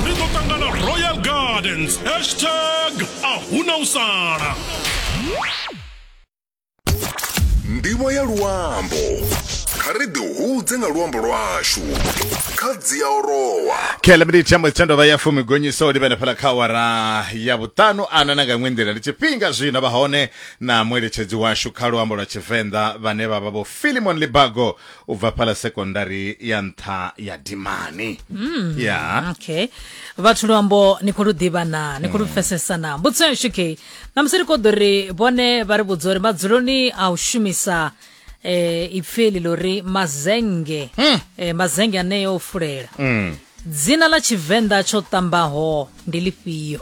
ri ḓo ṱangana royal gardens hashtag a huna u sala ndivho ya luambo kha ri ḓihudze nga luambo lwashu kha dzia orowa kele miniti ya mutendo vha ya fumi gonyiso u livhene fhala kha wara ya vhuṱanu ana na nga iṅwe nḓila ndi tshifhinga zwino vha hone na mueletshedzi washu kha luambo lwa tshivenḓa vhane vha vha vho filimon libago u bva fhala sekondari ya nṱha ya dimani ya okay vhathu luambo ni khou lu ḓivha na ni khou lu pfesesa na mbudziso yashu kei namusi ri khou ḓo ri vhone vha ri vhudza uri madzuloni a u shumisa eh, ipfi eli ḽo ri mazenge eh, mazenge aneyo o fulela dzina ḽa tshivenḓa tsho ṱambaho ndi lifhio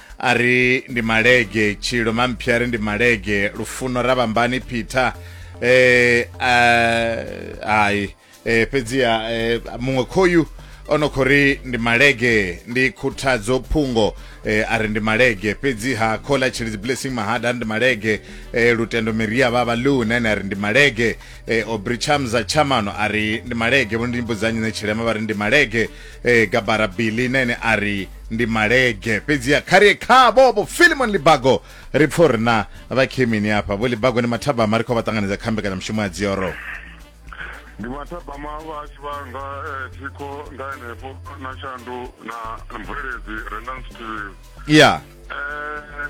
a ri ndi malege tshilo mamphi a ri ndi malege lufuno ra vhambani peter eh hai eh fhedziha eh, muṅwe khoyu ono khou ri ndi malege ndi khuthadzo phungo eh, a ri ndi malege fhedziha khola tshilidzi blessing mahada a ri ndi malege eh, lutendo miria vhavha lu nene a ri ndi malege eh, obri chamza chamano a ri ndi malege vho ndi mbudzanyi ne tshilema vha ri ndi malege e, gabara billy na ene a ri ndi malege fhedziha kha ri ye khavho vho filimon libago ri pfo ri na vhakhemini afha vho libago ni mathabama ri khou vha ṱanganedza kha mbekanyamushumo ya dzioro ndi mathabama vhashu vhanga eh, thikho nga henefho na shandu na mveledzi rendan steel ya Eh,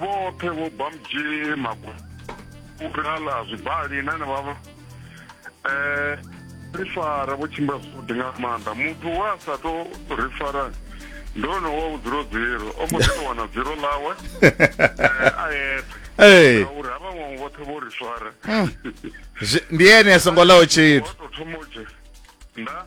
vhoṱhe vho bamji magukhala zwibali na na vhavha eh ri fara vho tshimbila zwavhuḓi nga maanḓa muthu wa sa to ri fara ndi one wa u dzula dziro o mbo ḓi to wana dziro ḽawe eh, a yeṱhe ee ngauri ha vha vhaṅwe vhoṱhe vho ri fara Zwi- ndi ene a songo ḽaho tshithu wa to thoma u dzhe nda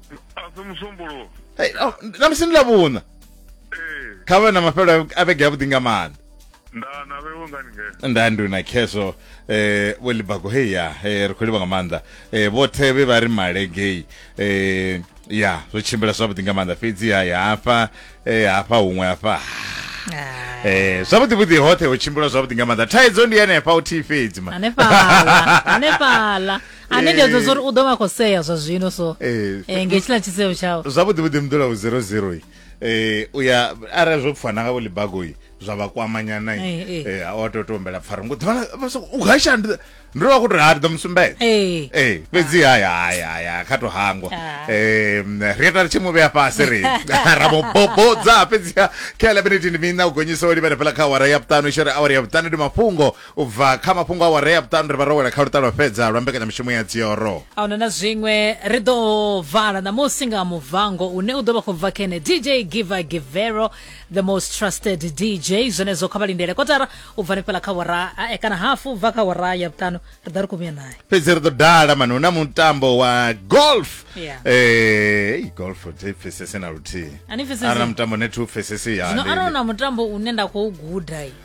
asi musumbuluwo Hey, oh, na musi ndi lavhuṋa ee kha vhe na mafhelo a vhege avhuḓi nga maanḓa nda na vhewe ngani ngeno nda ndi na khezwo eh vho libago hey ya eh, ri khou livha nga maanḓa eh vhoṱhe vhe vha ri malegei eh ya zwo tshimbila zwavhuḓi nga maanḓa fhedzi ya ya hafha eh hafha huṅwe hafha Ah, eh zwavhuḓi vhuḓi hoṱhe ho tshimbila zwavhuḓi nga maanḓa thaidzo ndi henefha u thi fhedzi ma hanefhala hanefhala ane ndi adzo zori u ḓo vha khou sea zwa zwino so eh, eh, nge tshila tshiseo tshao zwavhuḓi vhuḓi mudolawu 00 um eh, u ya arali zwo pfana nga volibagoyi zwa vha kwamanyana a wa tou tombela pfara ngo u hasha ndi ndo vha ku tou ha ndi ḓo musumbedza ee fhedzi haya haya haya kha tou hangwa um ri ya tari tshi mu vhea fhasi ri ra mu bobodza fhedzi kha elevenetini mina u gonyisa o livhela fhela kha awara ya vhuṱanu i shere awara ya vhuṱanu ndi mafhungo U bva kha mafhungo a warea vhuṱanu ri vha ro wela kha luṱa lwa fhedza lwa mbekanyamushumo ya dzioro. A huna na zwiṅwe, ri ḓo vala ṋamusi nga muvango une u ḓo vha khou bva khene DJ Giver Givero, the most trusted DJ. Zwenezwo kha vha lindele kotara u bva hanefhaḽa kha wara a e kana hafu u bva kha wara ya vhuṱanu ri ḓa ri khou vhuya naye. Fhedzi ri ḓo dala mani hu na mutambo wa golf. Yeah. Eh, ei golf thi pfesese na luthihi. A ni pfesesi? Arali na mutambo ne thi u pfesesi ya. Zwino arali hu na mutambo une nda khou guda.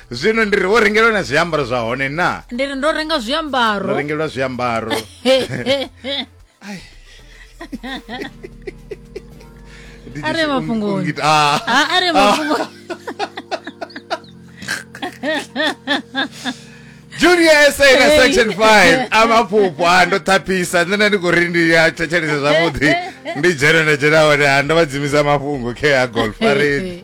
zwino ndi ri wo rengelwa na zwiambaro zwa hone na ndi ri ndo renga ndo zwiambaro rengelwa zwiambaro Ndi A re tshi- mafhungoni. ungi- ungi- ah. Ah, a re mafhungo junior sa na section 5 amaphupo a ndo thaphisa nṋe ndi khou ri ndi a thetshelese zwavhuḓi ndi dzhena nda dzhena hone a ndo vha dzimisa mafhungo khe a golf a ri